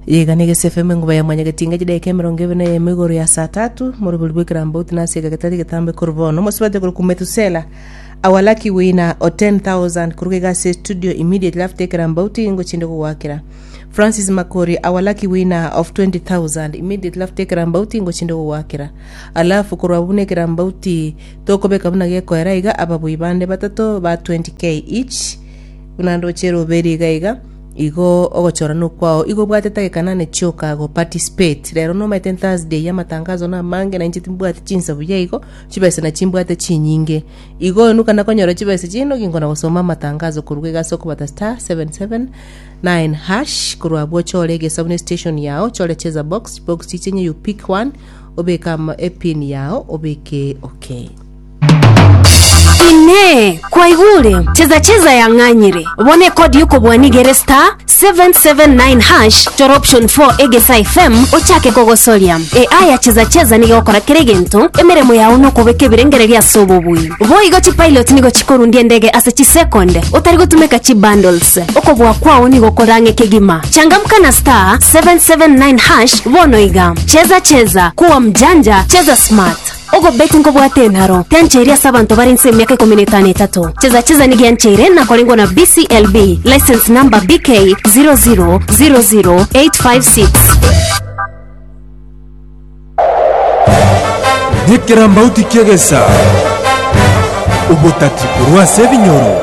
Yega na egese FM engoba ya mwanyagetinga chidaika emerongo ebe na eyemo igoro ya saa tatu morobori bw'ekerambauti na ase egagetari egetambe korwa bono mosibate korwa ku Metusela our lucky winner o 10000 koruga iga ase studio immediately after ekerambauti ingo chinde kogwakera Francis Makori our lucky winner of 20000 immediately after ekerambauti ingo chinde kogwakera alafu korwa buna ekerambauti tokobeka buna gekoera iga ababui bande batato ba 20k each buna ndochere oberie iga iga Igo ogochorana okwao igo obwate tageka nane chioka go participate. Rero nomaete Thursday ya amatangazo na amange na inche timbwati chinsa buya igo, chibesa na chimbwate chinyinge. Igo onuka nakonyora chibesa chie nogi nkona gosoma amatangazo koruga iga ase okobata star 779 hash korwa abwo chore egesa buna station yao chore cheza box, chibox chiche enye you pick one obeke ama epin yao obeke okay. Inee! Kwaigwa ore? Cheza cheza yang'anyire. Bono ekodi yokobwania igere star 779 hash chora option 4 egesa FM ochake kogosoria. AI ya cheza cheza nigo egokora kera egento, emeremo yao nokobeka ebirengererio ase obobui. Boigo chipilot nigo chikorundia endege ase chisecond otari gotumeka chibundles. Okobua kwao nigo okorang'e kegima. Changamka na star 779 hash bono iga. Cheza cheza, kuwa mjanja, cheza smart. Ogobeti nkobwate enaro tiancheiri ase abanto bare inse emiaka ikomi na etano etato. Cheza cheza nigo yancheire nakorengwa na BCLB license number BK 0000856. Nekerambauti ki'egesa, obotati korwa ase ebinyoro.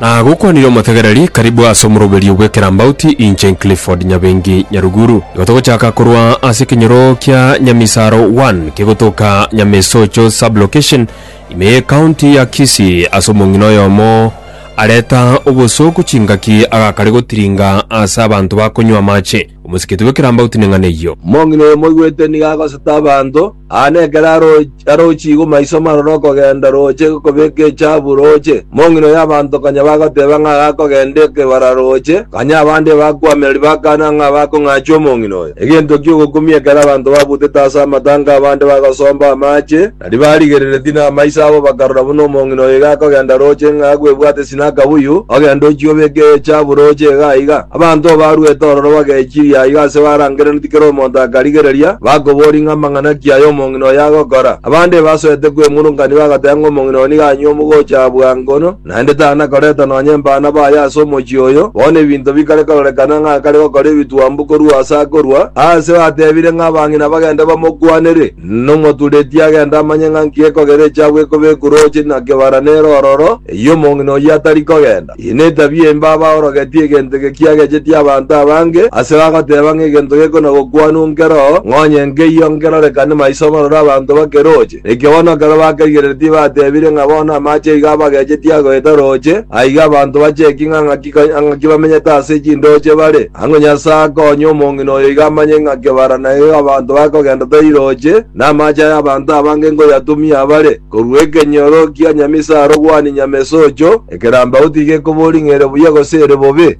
Na gokwanire omotegereri, Karibu ase omoroberio bw'ekerambauti, inche Clifford Nyabengi Nyaruguru. Igo togochaka korwa ase ekenyoro kia Nyamisaro One kegotoka Nyamesocho Sub-location, ime ye County ya Kisii ase omong'ina oyomo areta obosooku chingaki agakare gotiringa ase abanto bakonywa amache. Omosikiti bw'ekerambauti neng'ana eyio. Omong'ina oyo moigwete nigo agoseta abanto, aa nekero arochigwe maiso marore okogenda roche kobeka echabu roche. Omong'ina oyo abanto konya bagoteba ng'a agakogenda ekebara roche, kanya abande ebakwamera ribakana ng'a bakong'achwa omong'ina oyo. Egento ki'ogokumia ekero abanto babutete ase amatanga abande bagosomba amache, Riria barigereretie namaiso abo bakarora buna omong'ina oyo iga akogenda rooche ng'a agwebwate ase na akabuyu, ogende ochie obeke eecha abu rooche iga aiga. Abanto baruete ororo bagechiria aiga ase barangereretie kera omonto akarigereria, bakobori ng'a amang'ana ki aya omong'ina oyo agokora? Abande ebasoete kwemurunganigwa agoteba ng'a omong'ina oyo nigo anywa omogocho aa bwango no, naende tana koreta nonya embano baye ase omochie oyo. Bono ebinto bikare kororekana ng'a akare gokora ebitwambu korwa ase akorua, aase batebire ng'a abang'ina bagende bamokwanere. Nomoturetie agende amanye ng'a nki ekogera echiabu ekobekwa rooche na kebara nere ororo, eyio omong'ina oyio atari kogenda. Eye netabia embe aba orogetie egento eke kiagechetie abanto abange, ase bagoteba ng'a egento gekonagokwanwa nkero, ng'a onye nkeiyo nkerorekane maiso amaroro abanto bake rooche. Ekiagera bono ekero bakerigereria tibatebire ng'a bono amache iga abagechetie agoeta rooche, aiga abanto bacheki ng'a ng'aki bamenyete ase chindooche bare. Ang'o Nyasae akonye omong'ina oyo iga amanye ng'a kebara na iga abanto bakogenda tairoche, na amache ay'abanto abange nkoyatumia abare, korua ekenyoro kia nyamisaro gwani nyamesocho, ekerambau tigekobori ng'a ere buya gose ere bobe.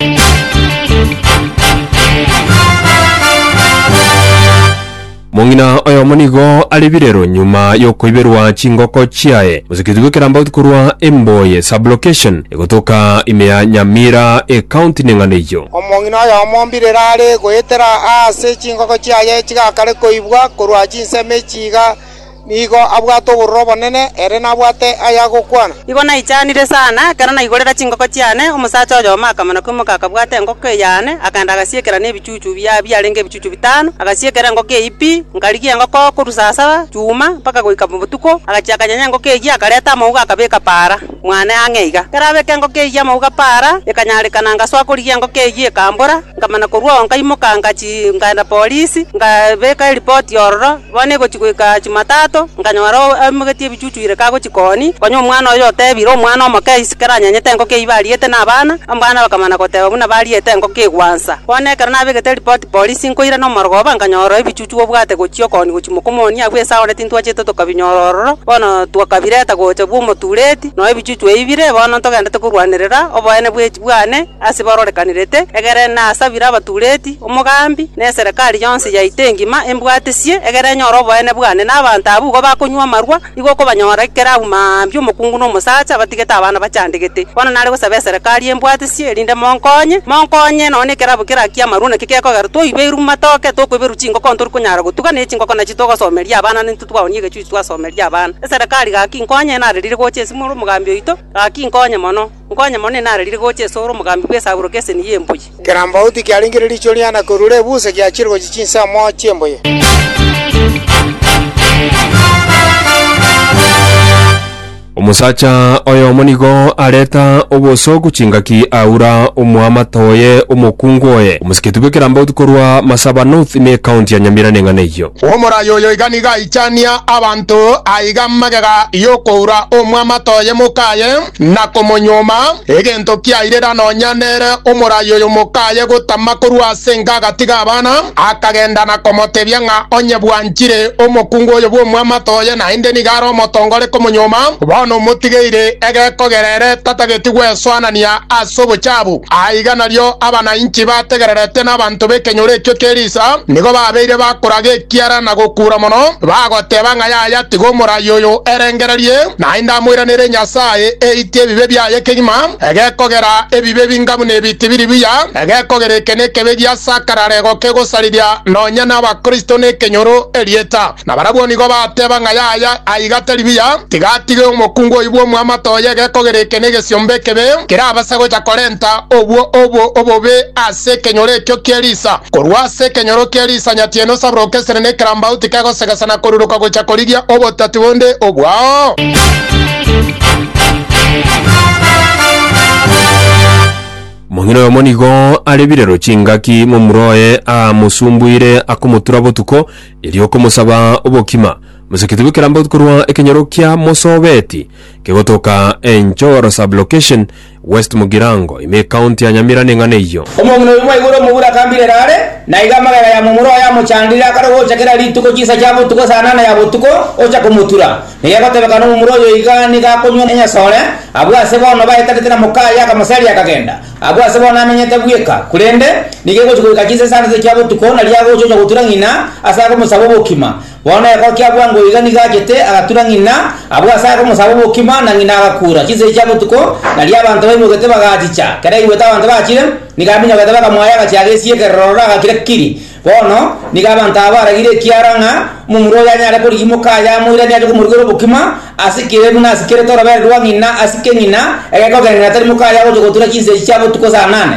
Mong'ina oyomo nigo are birero nyuma y'okoiberwa chingoko chiaye. Moseketi bw'ekerambauti korwa Emboye Sub-location egotoka ime ya Nyamira Ecounty neng'ana eyio. Omong'ina oyomo mbirero are goetera aase chingoko chiaye chigakare koibwa korwa chinsemo echi iga, Nigo abwate obororo obonene, ere nabwate ay'agokwana. Nigo naichanire sana ekero naigorera chingoko chiane, omosacha oyomo akamana koimoka akabwata engoko eyane, akaenda agasiekera nebichuchu bia biarenge ebichuchu bitano, agasiekera engoko eyio pi, nkarigia engoko korwa saa saba chuma mpaka goika botuko, agachia akanyenya engoko eyio akareta amauga akabeka paara mwane ang'e iga. Ekero abeka engoko eyio amauga paara ekanyarekana ngasoa korigia engoko eyio ekambora, nkamana korwa oo nkaimoka ngachii nkaenda polisi, nkabeka eripoti ororo, Bono egochia goika Chimatato, nkanyora aimogetie ebichuchu ire kagochia koni, konya omwana oye otebire omwana omoke aise ekero anyanyete engoko eyio bariete na abana, abana bakamana goteba buna bariete engoko egwansa. Bono ekero nabegete ripoti polisi nkoirana omorogoba, nkanyora ebichuchu obwate gochia okoni gochia moka omoni agwo ase agwo na tintwachete tokabinyora ororo, bono twakabireta gocha bw'omotureti, na ebichuchu eyio bire bono ntogendete korwanerera oboene bw'echie bwane. Ase barorekanirete egere nasabire abatureti, omogambi, na eserekari yonsi yaito engima embwatesie, egere enyore oboene bwane. Na abanto abwo igo bakonywa amarwa, nigo okobanyora ekero agwo mambia omokungu na omosacha batigete abana bachandegete. Bono nare gosaba eserekari embwatesie, erinde monkonye, monkonye nonya nekerabo kerakia amarwa naki gekogera toibeirwe amatoke, tokoiberwa chingoko ntori konyara gotuga, ne chingoko nachi togosomeria abana nintwe twaoni egechuchu twasomeria abana. Eserekari gaki nkonye, narerire gocha ase more omogambi oito, gaki nkonye mono. Nkonye mono inararire gocha ase ore omogambi bw'esaburo k'eseni y'embuya. Kera mbauti kiarengire riicho riane korwa rebusa giachire gochia chinse amo chi'embuya. Omosacha oyomo nigo areta obosooku chingaki aura omoamate oye omokungu oye omosiketi bw'ekerambauti korwa Masaba North ne County ya Nyamira neng'ana eyio. Omoraai oyo iga nigo aichania abanto aiga magega y'okoura omoamate oye mokaye. na komonyuoma, egento kiairera nonya nere omoraai oyo mokaye gotama korwa ase enka agatiga abana, akagenda na komotebia ng'a onye bwanchire omokungu oyo bw'omwamato oye naende nigo are omotonga ore komonyuoma, bono omotigeire egekogera ere tatageti gwesoanania ase obochabu. Aiga nario abanainchi bategererete n'abanto b'ekenyoro ekio Tirisa nigo babeire bakoraga ekiara na gokuura mono, bagoteba ng'a. Yaya, tiga omoraia oyo erengererie, naende amoiranere Nyasae, eitie ebibe biaye kegima, egekogera ebibe binga buna ebi tibiri buya, egekogera eke nekebe giasakarare gokegosariria nonya n'Abakristo nekenyoro erieta. Na barabwo nigo bateba ng'a yaya, aiga tari buya, tiga atige omokungu oyio bw'omwamato oye egekogera eke negesiomba ekebe, kerabase gocha korenta obwo obo obobe ase ase ekenyoro ekio ki'erisa. Korwa ase ekenyoro ki'erisa nyatieno osabroke esere na ekerambauti kegosegesa na koruruka gochia korigia obotati bonde obwao. Omong'ina oyomo nigo are birero chingaki momura oye amosumbuire akomotura botuko, erio okomosaba obokima. Mosekete bw'ekerambauti korwa ekenyoro kiamosobeti kegotoka enchoro, sublocation, West Mugirango, ime ekaunti ya Nyamira neng'ana eyio. Omong'ina oyo bwa igoro omobura akambirera are, na iga amagega ya momura oye amochandire, akarogocha kera rituko chinsa chia botuko saa nane ya botuko, ocha komotura. Na gegotebeka nomomura oyo iga nigo akonywa enyasore, abwo ase bono baetanete na mokaye akamoseria akagenda. Abwo ase bono amenyete bweka, korende nigo egochi goika chinsa isano chia botuko, nario agocha ocha gotura ng'ina ase agomosaba obokima. Bono ekero kiabua ng'a oiga nigo achete, agatura ng'ina, abua ase are omosabo bw'okima, na ng'ina agakuura. Chinsegi chia botuko, nario abanto baimogete bagachicha. Ekero aigwete abanto bachire, nigo aminyogete bakamoa y'agachie agesie ekerero ororo agakira kiri. Bono nigo abanto aba baragire ekiara ng'a omomura oyo anyare korigia omokaye amoiranie ache komorigera obokima, asikire buna asikerete orobere rwa ng'ina, asike ng'ina, egekogera ng'a tari mokaye agocha gotura chinsegi chia botuko saa nane.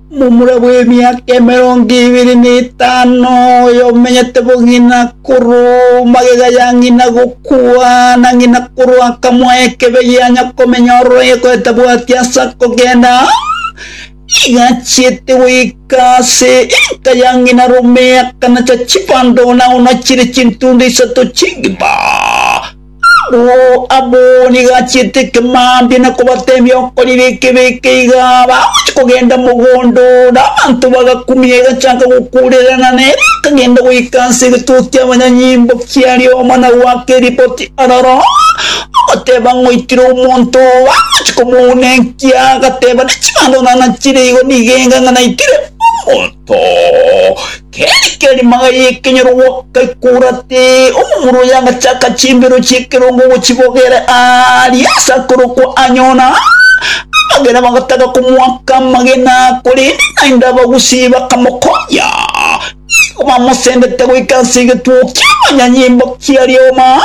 Momura bw'emiaka emerongo ebere na etano, oyomenyete bong'ina koroo magega ya ng'ina gokwana ng'ina koroo akamoa ekebe gianya komenya ororo egoetabwati ase akogenda, nigo achiete goika ase enka ya ng'ina rome akanacha chibando na onachire chintunde isato ch'egepa. Oo abo nigo achiete ekemambia na kobata ebiokori bike bike iga bagochia kogenda mogondo na abanto bagakumia egachaka gokurerana na ere akagenda goika ase egetuo kia abanyanyimbo kia rioma na goaka eripoti aroro ogoteba ngoikire omonto bagochia komounenkia agateba ne chibando nana chire igo nigo enga ng'a naikire omonto Keri keri magaya ekenyorogwa gaikora ati omomura oye agachaka chimbero chi'ekerongo ogochibogera aaria ase akorokwa Anyona. Abagera bagataka komoaka amagena, korende naende abagusii bakamokonya. Nigo bamosendete goika ase egetuo ki'amanyanyimba kia Rehoba,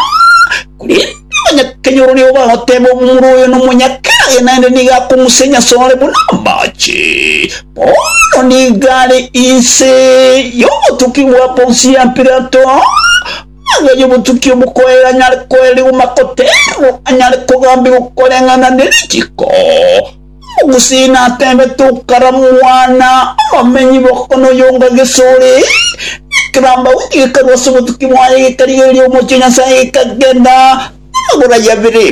korende Omonyakenya oro nigo bagoteeba omomura oyo nomonyakare, naende nigo akong'usenya ase ore buna amache. Paulo nigo are inse y'obotuki bwa Ponsi ya Pilato, aganye obotuki obokoeera anyare koerirwa makoteererwa, anyare kogambigwa koreng'ana ne richiko. Gose natebete okaramwana abamenyi bokong'ina oyonga gesore, na ekerambagu gekarwa ase obotuki bwaye gekarigereria omochie o Nyasae gekagenda amagoro aye abere.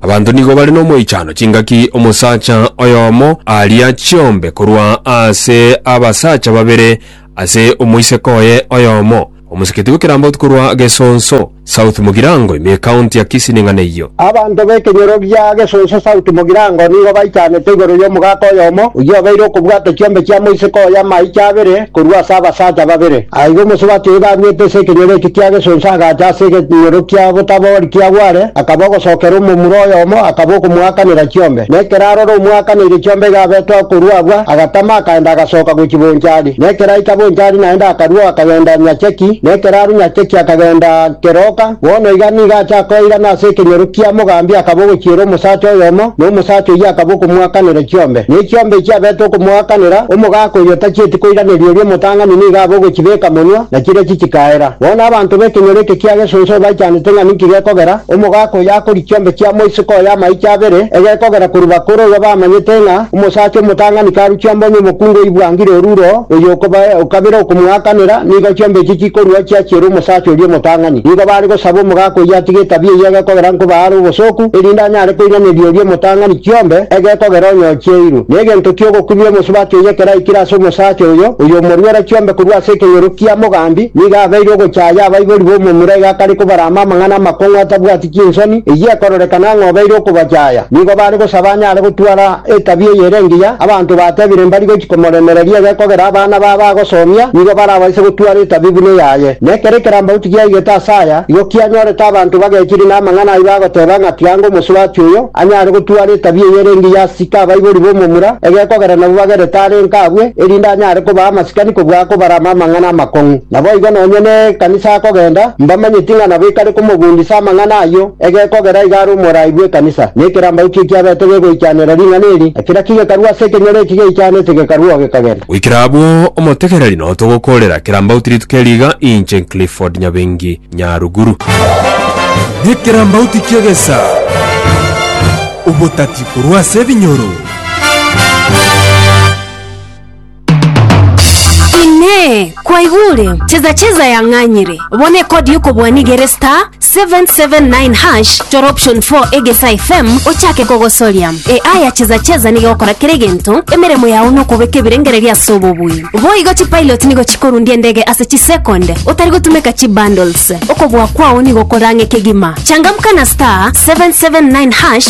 Abanto nigo bare nomoichano chingaki omosacha oyomo aria chiombe korwa ase abasacha babere ase omoiseke oye oyomo. Omosikiti bwe Kirambotu korwa Gesonso South Mugirango ime County ya Kisii neng'ana eyio. Abanto b'ekenyoro gia Gesonso South Mugirango nigo baichanete igoro y'omogaka oyomo oyio obeire okobwata ekiombe kia moiseke oye amaicho abere korwa ase abasacha babere. Aiga omosubati oyo baruete ase ekenyoro eke kia Gesonso agacha ase ekenyoro kia Botabori kia Gwale akaba ogosokera omomura oyomo akaba okomoakanera chiombe. Nekero arora omoakaneire chiombe iga abetwa korwa agwo agatama akaenda agasoka gochia Bonchari. Na ekeraika bonchari naende akarua akagenda Nyacheki, na ekeraaru Nyacheki akagenda Keroka, bono iga nigo acha koirana ase ekenyoro kia mogambi akaba ogochiera omosacha oyomo, na omosacha oyio akaba okomoakanera chiombe, ne chiombe echio abete okomoakanera, omogaka oyio tachieti koiraneria oria omotang'ani nigo abe ogochibeka monwa, na chiria chichikaera. Bono abanto b'ekenyoro eke kia gesunsemo baichanete ng'a ninki gekogera, omogaka oyio akorigia chiombe chia moisiko oye amaicho abere, egekogera korwa bakoro iga bamanyete ng'a, Omosacha omotang'ani karuchia mbonye omokungu oibwangire oruro, oyo okobae o kabere okomoakanera, nigo chiombe echi chikorua chiachiere omosacha oria omotang'ani. Nigo bare gosaba omogaka oyio atige etabia eyio egekogera nkoba are obosooku, erinde anyare koiraneria oria omotang'ani chiombe egekogera onye ochieirwe. Negento ki'ogokumia omosubati oyo ekero aikire ase omosacha oyo, oyo omoruera chiombe korwa ase ekenyoro kia mogambi, nigo abeire ogochaaya abaibori b'omomura iga akare kobarama amang'ana amakong'u atabwati chinguru. Inki ensoni eyio ekororekana ng'a obeire okobachaya? Nigo bare gosaba anyare gotwara etabia eye ere engiya, abanto batebire mbari gochi komoremereria egekogera abana babo agosomia nigo barabaise gotwara etabia buna eyaye. Na ekero ekerambaguti giaigete ase aya, igo kianyorete abanto bagechiri namang'ana ayio bagoteba ng'a tianga omosurati oyo anyare gotwara etabia eye ere engiya asike abaibori b'omomura egekogera nabo bagerete are inka abue, erinde anyare kobaa amasikani kobua akobarama amang'ana amakong'u. Naboigo nonya nekanisa akogenda, mbamanyeti ng'a nabo ekare komogundisa amang'ana ayio, egekogera iga are omoraai bw'ekanisa, na ekerambau ki'ekiabete gegoichanera ring'ana eri, na kera kigekarua ase ekenyoro eki geichanete gekarua oo gekagenda. Goikera abwo, omotegereri noo togokoorera ekerambau tirituko eri iga, inche Clifford Nyabengi Nyaruguru. Ekerambau tikiegesa obotati korwa ase ebinyoro. Inee! Kwaigure? Cheza cheza yang'anyire. Bono ekodi yokobwania igere star 779 hash chora option 4 egesa FM ochake kogosoria. AI ya cheza cheza nigo egokora kera egento, emeremo yao nokobeka ebirengererio ase obobui. Boigo chipilot nigo chikorundia endege ase chisecond otari gotumeka chibundles. Okobua kwao nigo okorang'e kegima. Changamka na star 779 hash